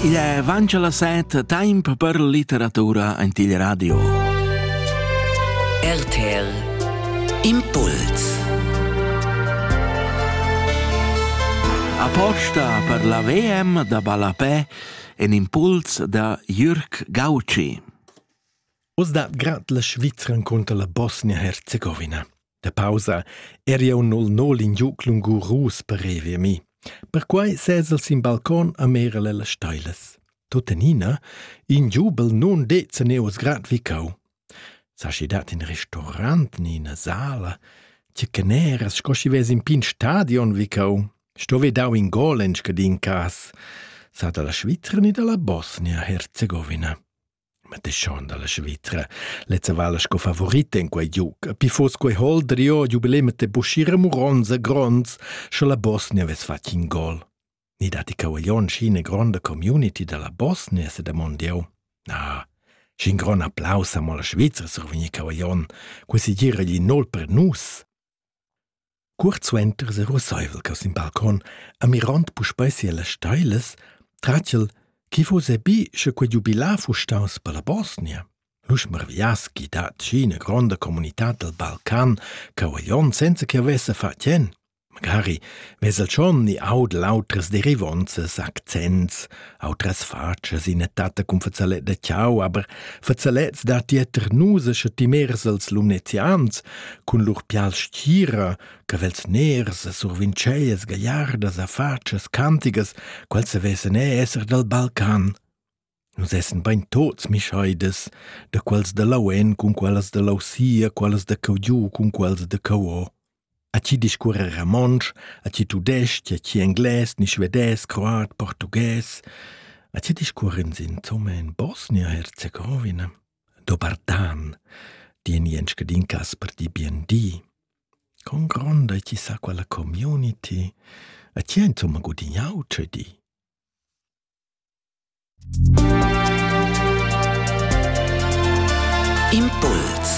Il è avancha la set, temp per litteratura en il radio. RTL Impuls Aposta per la VM da ballapè en impuls da Jürg Gauci. Oz da grad la Svizra encunter la Bosnia-Herzegowina. Da pausa eri jeu nol nol in giug lungurus per revier mi. Perquei sez el sin balcon a merel las steilas. Tuttenina, in giubel nun det se neos grad vi cau. Saschi dat in restaurant ni ina sala, tge caneras sco schi ves in pin stadion vi cau. Sto ve dau in gol en scadin cas, sa dalla Svizra ni dalla Bosnia-Herzegovina. Ma te schon dalla Svizra. Lezza vala sco favorita in quei giug. Pi fos quei hol drio jubileum te buschira muronza gronds, sche la Bosnia ves fatg in gol. Ni dati cavaglion scine gronda community dalla Bosnia se da mondiau. Na, scin gron applaus amo la Svizra survigni cavaglion. Quasi gira gli nol per nus. Cuort suenter serusseivel cheu sin balcon, amirond puspei sias steilas, tratgel chi fuss bi sche quei giubilar fuss staus per la Bosnia. Lu smarviass chi dat schi ina gronda comunitad dal Balcan cheu a Jon senza che havesse fa tien. Magari vess el schon ni aud l'autras derivonzas, accents Autras fatschas ina tatta cun fazzalet da chau, aber fazalets dat dieter nusa sche timers als lumnezians cun lur pials stira, cavels ners e survinceias gagliardas a fatschas cantigas, quals se vessen e esser dal Balcan. Nus essen bein tots mischaides, da quals da Lauen cun qualas da Lausia, qualas da Caugiu cun quals da Cauo. A chi discuorra ramontsch, a chi tudesc-ch, a chi englais, ni svedais, croat, portughes, a chi discuorr'ins insomma in Bosnia-Herzegowina? Do Bartan, di in ien scadin cas per dir bien di. Con gronda chi sa quella community, a chi ha insomma gudignau tscheu di? Impuls